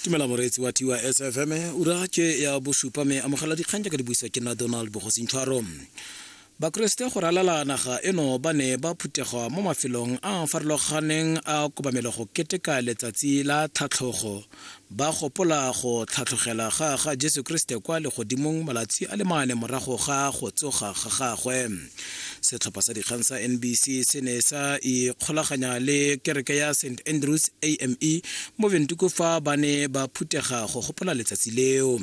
tumela moreetsi wa tiwa sfm ura ke ya bosupa me amogela dikgang jaaka di buisa ke nna donald bogosintshwaro bakeresete go ralala naga eno ba ne ba phuthegwa mo mafelong a a farologaneng a kobamelo go keteka letsatsi la tlhatlhogo ba gopola go tlhatlhogela ga ga jesu kriste kwa legodimong malatsi a le mane morago ga go tsoga ga gagwe setlhopha sa dikgang sa nbc se ne sa ikgolaganya le kereke ya st andrews ame mo ventuko fa ba ne ba phuthega go gopola letsatsi leo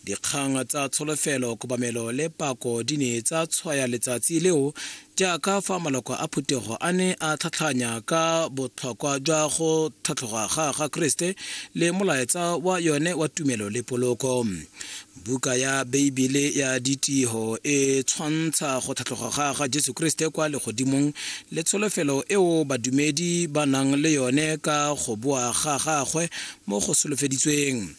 dikgang tsa tsholofelo kobamelo le pako di ne tsa tshwaya letsatsi leo jaaka fa maloko a phuthego a ne a tlhatlhanya ka botlhokwa jwa go tlhatlhoga ga ga kriste le molaetsa wa yone wa tumelo le poloko Buka ya Beibele ya Ditiro e tshwantsha go tlhatlhoga ga ga Jesu Kriste kwa legodimong le tsholofelo eo badumedi ba nang le yone ka go boa ga gagwe mo go solofeditsweng.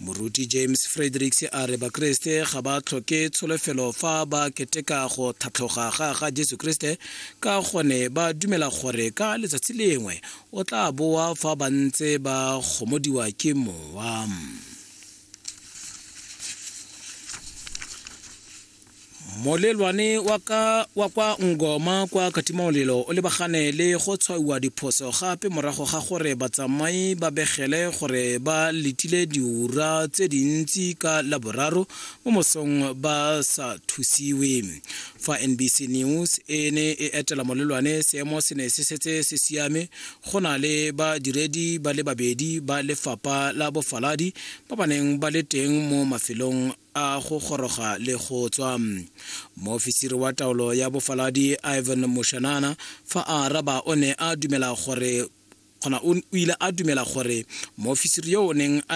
Moruti James Fredericks a re Bakriste ga ba tlhoke tsholofelo fa ba keteka go tlhatlhoga ga ga Jesu Kriste ka gone ba dumela gore ka letsatsi lengwe o tla boa fa ba ntse ba gomodiwa ke mowa. molelwane wa ka wa kwa ngoma kwa katimamolelo o lebagane le go tshwaiwa diphoso gape morago ga gore batsamai ba begele gore ba letile diura tse dintsi ka laboraro mo mosong ba sa thusiwe fa nbc news e ne e etela molelwane seemo se ne se setse se siame go na le badiredi ba le babedi ba lefapha la bofaladi ba ba neng ba le teng mo mafelong a go goroga le go tswa moofisiri wa taolo ya bofaladi ivan moshanana fa a araba o ne a dumela gore kgona o ile a dumela gore moofisiri yo o neng a